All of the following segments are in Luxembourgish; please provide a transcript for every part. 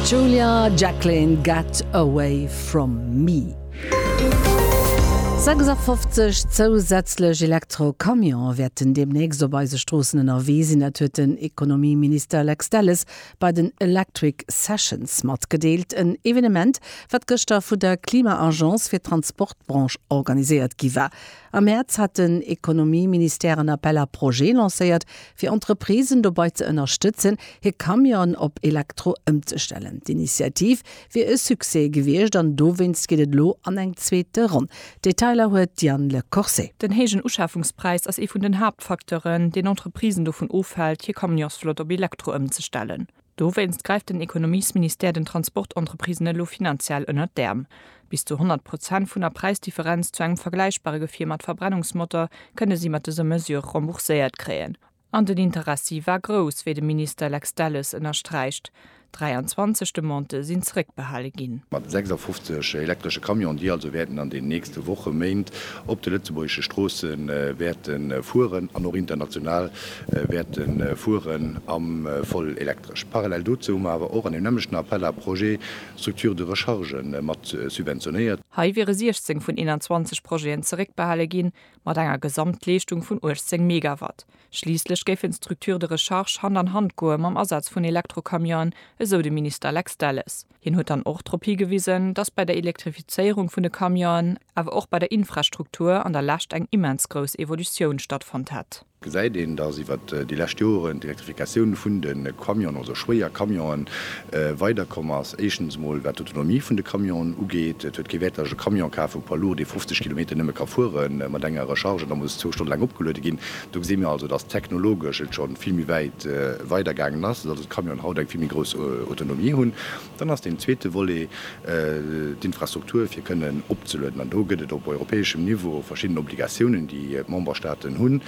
Julia Jacklin, Get Away From Me. 56 zousätzlech Elektro-Camionen wäerten deemnächst op eise Stroossen ënnerwee sinn. Dat huet den Ekonomieminister Lex Delles bei den Electric Sessions matgedeelt. En Evenement, wat gëschter vun der Klima-Agence fir d'Transportbranche organiséiert gi war. Am Mäerz hat den Ekonomieministère en Appel à projets lancéiert, fir Entreprisen dobei ze ënnerstëtzen, hir Camionen op Elektro ëmzestellen. D'Initiativ wier e Succès gewiescht an dowéinst geet et elo an eng zweete Ronn. D'Detailer huet d'Diane Le Corse. Den héijen Uschafungspräis ass ee vun den Haaptfacteuren, deen Entreprisen dovun ofhält, hir Camionsflott op Elektro ëmzestellen. Dowéinst gräift den Ekonomiesministère den Transportentreprisen elo finanziell ënnert d'Äerm. Bis zu 100 Prozent vun der Präisdifferenz zu engem vergläichbare Gefier mat Verbrennungsmotor kënne si mat dëser Mesure rembourséiert kréien. An den Interessi war grouss, wéi de Minister Lex Delles ënnersträicht. 23 Demandë sinn zeréckbehale ginn. Mat 56 elektresche Camionen, déi also wäerten an den nächste Woche, Méint op de lëtzebuergesche Stroosse wäerte fueren an och international wäerte fueren am voll elektresch. Parallel dozou hu mer awer och an deem nämmlechten Appel à projets Structures de recharge mat subventionéiert. Hei wiere 16 vun 21 Projeten zeréckbehale ginn, mat enger Gesamtleeschtung vun 18 Megawatt. Schliisslech géifen d'Structures de recharge Hand an Hand goe mam Asaz vun Elektrocamionen, esou de Minister Lex Delles. Hien huet dann och drop higewisen, datt bei der Elektrifizéierung vun de Camionen, awer och bei der Infrastruktur an der Lescht eng immens grouss Evolutioun stattfonnt hätt. Gesäit een, datt iwwert déi lescht Joren d'Elektrifikatioun vun de Camionen, also schwéier Camionen, weider komm ass. Éischtens emol wat d'Autonomie vun de Camionen ugeet. Et huet kee Wäert, datt ech e Camion kafen, e Poids lourd, dee 50 Kilometer nëmme ka fuere mat enger Recharge an da muss zwou Stonne laang opgeluede ginn. Do gesi mir also, dass technologesch et scho vill méi wäit weider gaangen ass, dass also d'Camionen haut eng vill méi grouss Autonomie hunn. Dann ass deen zweete Volet d'Infrastruktur, fir kënnen opzelueden. An do gëtt et op europäeschem Niveau verschidden Obligatiounen, déi d'Memberstaaten hunn.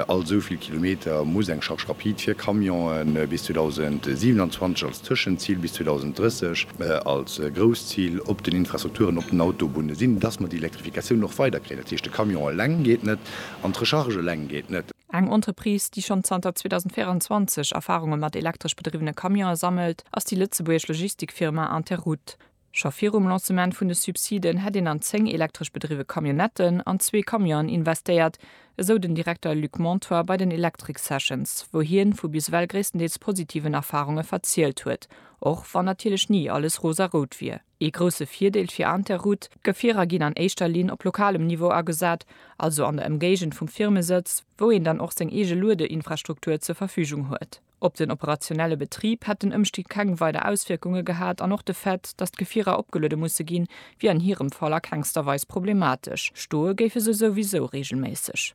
All esou vill Kilometer muss eng Charge rapide fir Camionen bis 2027 als Tëschenzil, bis 2030 als Grousszil op den Infrastrukturen op den Autobunne sinn, dass mer déi Elektrifikatioun och weider kréien. Dat heescht, de Camion eleng geet net. An d'Recharge eleng geet net. Eng Entreprise, déi schonn zanter 2024 Erfarunge mat elektresch bedriwwene Camionen sammelt, ass déi lëtzebuergesch Logistikfirma Interroute. Scho virum Lancement vun de Subsiden hätt een an zéng elektresch bedriwwe Camionnetten an zwee Camionen investéiert, esou den Direkter Luc Montoy bei den Electric Sessions, wou hien vu bis ewell gréisstendeels positiven Erfarunge verzielt huet, och wann natierlech ni alles rosarout wier. Ee grousse Virdeel fir Interroute, D'Gefierer ginn an éischter Linn op lokalem Niveau agesat, also an der Ëmgéigend vum Firmesëtz, wou een dann och seng eege Luedeinfrastruktur zur Verfügung huet. Op den operationelle Betrib hätt den Ëmstieg keng weider Auswierkunge gehat an och de Fait, datt d'Gefierer opgeluede musse ginn, wier an hirem Fall a kengster Weis problematesch, stoe géife se souwisou reegelméisseg.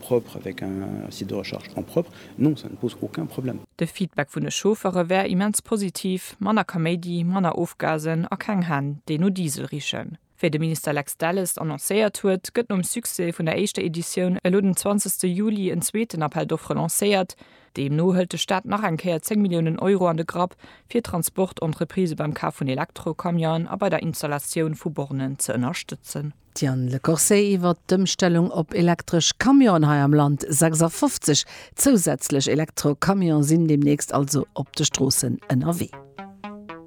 propre avec un site de recharge en propre, non ça ne pose aucun problème. De Feedback vun de Chauffere wär immens positiv, manner Kaméidi, manner Ofgasen a keng Hänn, déi no Diesel richen. Wéi de Minister Lex Delles annoncéiert huet, gëtt nom Succès vun der éischter Editioun elo den 20 Juli en zweeten Appel d'offres lancéiert. Deemno hëlt de Staat nach eng Kéier 10 Milliounen Euro an de Grapp, fir Transportentreprisen beim Kaf vun Elektrocamionen a bei der Installatioun vu Bornen ze ënnerstëtzen. D'Diane Le Corset iwwert d'Ëmstellung op elektresch Camionen hei am Land, 56 zousätzlech Elektro-Camione sinn deemnächst also op de Stroossen ënnerwee.